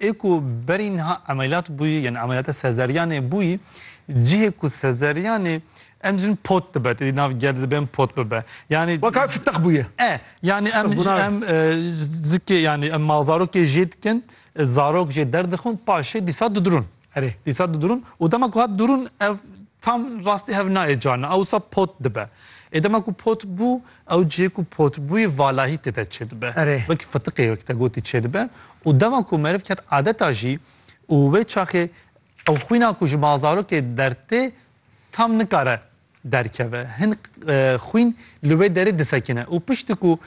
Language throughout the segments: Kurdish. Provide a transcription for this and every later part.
Ê ku berî niha emeliyat bûyî yanî emeliyata sezeryanê bûyî cihê ku sezeryanê em dibînin pot dibe tê nav ger dibe em pot bibe yanî Weka fiteq bûye. E yanî em Fiteq bûna. em zikê yanî em malzarokê jê dikin zarok jê derdixin paşê dîsa didirûn. Erê, dîsa didurûn û dema ku hat durûn ev tam rastî hev nayê carna ew wisa pot dibe. Ê dema ku pot bû ew cihê ku pot bûyê valahî tê de çêdibe. Erê. Wekî fitiqê wekî te gotî çêdibe û dema ku meriv ket adeta jî û wê çaxê ew xwîna ku ji bazarokê dertê tam nikare derkeve. Hin xwîn li wê derê disekine û piştî ku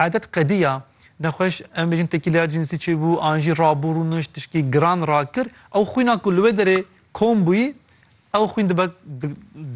edet qediya, nexweş em bêjin tekîleya cînsî çêbû an jî rabû rûnişt tişkî giran rakir, ew xwîna ku li wê derê kom bûyî, ew xwîn dibe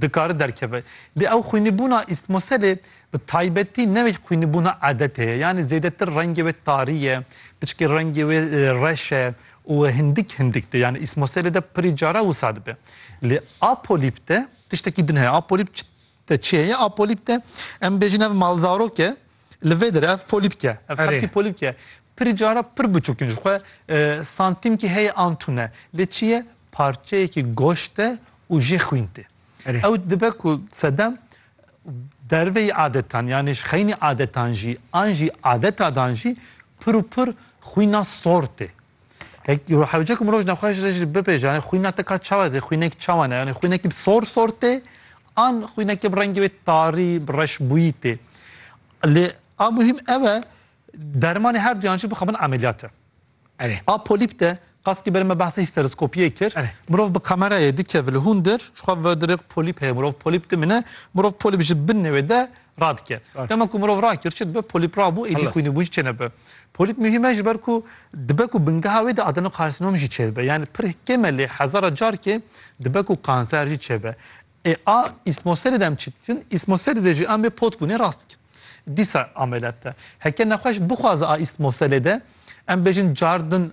dikare derkeve. Lê ew xwînîbûna îstmoselê bi taybetî ne wek xwînîbûna edetê ye. Yanî zêdetir rengê wê tarî ye, piştî rengê wê reş e û hindik hindik dibe. Yanî îstmoselê de pirî cara wisa dibe. Lê a polîp de Tiştekî din heye a polîp çi te çi heye? A polîp te em bêjin ev malzarok e li vê dire ev polîp ke ev Erê. hertî polîp ke pirî cara pir biçûk in ji xwe e, santîmkî heye an tune lê çi ye parçeyekî goşt e û jê xwîn tê. Erê. Ew dibe ku sedem derveyî adetan yanî ji xeynî adetan jî an jî adetadan jî pir û pir xwîna sor tê. Hewce ku mirov ji nexweş re jî bibe ji alî xwîna te ka çawa dê? Xwînek çawa ne? Yanî xwînekî bi sor sor tê an xwînekî bi rengê wê tarî bi reş bûyî tê. Lê a muhîm ew e dermanê her duyan jî bixebin emeliyate. Erê. A polîp de qas kî berê me behsa hîsteroskopiyê kir. Erê. Mirov bi kamerayê dikeve li hundir ji xwe ve dirêq polîp heye mirov polîp dimine. Mirov polîp ji binê wê de radike. Dema ku mirov rakir çi dibe polîp rabû êdî xwînîbû jî çênebe. Polîp muhîm e ji ber ku dibe ku bingeha wê de adenokarsinom jî çêbibe. Yanî pir kêm e lê hezara carkê dibe ku kanser jî çêbe. Ê a îsmoserî de em çi dikin? Îsmoserî de jî em ê pot bûnê rast dikin. Dîsa ameliyat de. Heke nexweş bixwaze a îsmoselê de em bêjin car din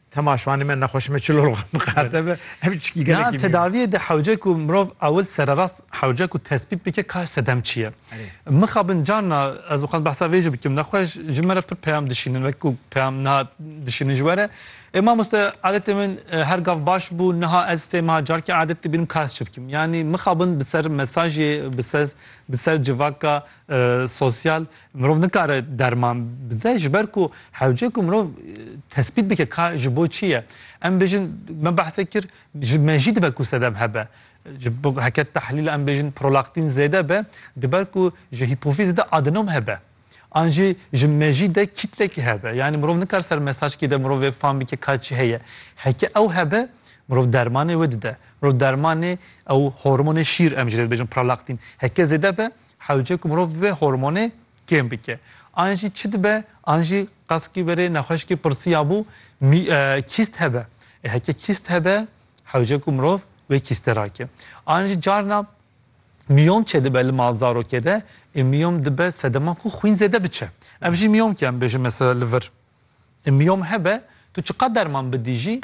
Tema şivanê me nexweşî me çilol xwe miqerde be. Ev çikî gelekî mî ye. Na tedaviyê de hewce ku mirov ewil sererast hewce ku tespît bike ka sedem çi ye. Mixabin carna ez dixwazim behsa vê jî bikim nexwe ji me re pir peyam dişînin wek ku peyam niha dişînin ji we re. Ê mamoste adetê min her gav baş bû niha ez sê meha carkê adet dibînim ka ez çi bikim. Yanî mixabin bi ser mesajê bi ser civaka sosyal Mirov nikare derman bide ji ber ku hewce ku mirov tespît bike ka ji bo çi ye. Em bêjin me behse kir ji me jî dibe ku sedem hebe. Ji bo heke tehlîl em bêjin prolaktîn zêde be di ber ku ji hîpofîzê de adenom hebe. An jî ji me jî de kîtlekî hebe. Yanî mirov nikare ser mesajkî de mirov vê fam bike ka çi heye. Heke ew hebe mirov dermanê wê dide. Mirov dermanê ew hormonê şîr em ji lê dibêjin pralaktîn heke zêde be Hewce ku mirov vê hormonê kêm bike. An jî çi dibe, an jî qezkî verê nexweşikê pirsiya bû mî kîst hebe. Ê heke kîst hebe, hewce ku mirov vê kîstê rake. An jî carna mîyom çêdibe li mal zarokê de, ê mîyom dibe sedema ku xwîn zêde biçe. Ev jî mîyomke em bêjin mesela li vir. Miyom hebe tu çiqad derman bidî jî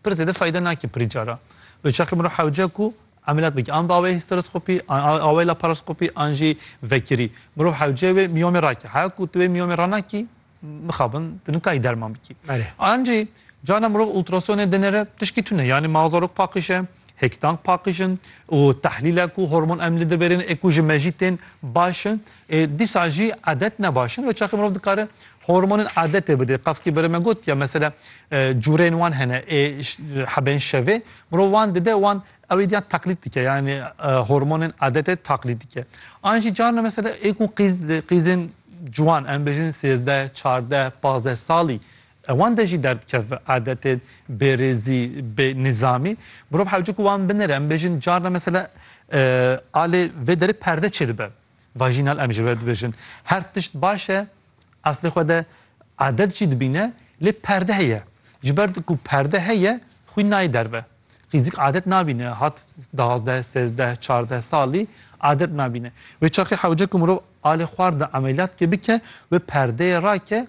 pir zêde feyde nake pirî cara. Bi çaxê mirov hewce ku emeliyat bike an bi awayê hîsteroskopî an awayê laparoskopî an jî vekirî mirov hewce wê miyomê rake. Heya ku tu wê miyomê ranakî mixabin tu nikayî derman bikî. An jî carna mirov ultrasonê dinêre tişkî tune yanî ma zarok paqij e, hêkdank paqij in û tehlîlek û hormon em li dir bêrîn ê ku ji me jî tên baş in Dîsa jî adet ne baş in. Wê çaxê mirov dikare hormonên adetê bide. Qasî bere me got ya mesela cureyên wan hene ê hebeyên şevê mirov wan dide wan ewê diyan teqlîd dike yanî hormonên adetê taqlîd dike. An jî carna mesela ê ku qîz dide qîzên ciwan em bêjin sêzdeh, çardeh, pazdeh salî wan de jî derdikeve adetên bêrêzî, bê nîzamî. Mirov hewce ku wan binêre em bêjin carna mesela alê vê derê perde çêdibe. Vaginal em ji we dibêjin. Her tişt baş e, eslê xwe de adet jî dibîne lê perde heye. Ji ber ku perde heye xwîn nayê derve. Qîzik adet nabîne hat duwazdeh, sêzdeh, çardeh salî adet nabîne. Wê çaxê hewce ku mirov alê xwar de emeliyat ke bike wê perdeyê rake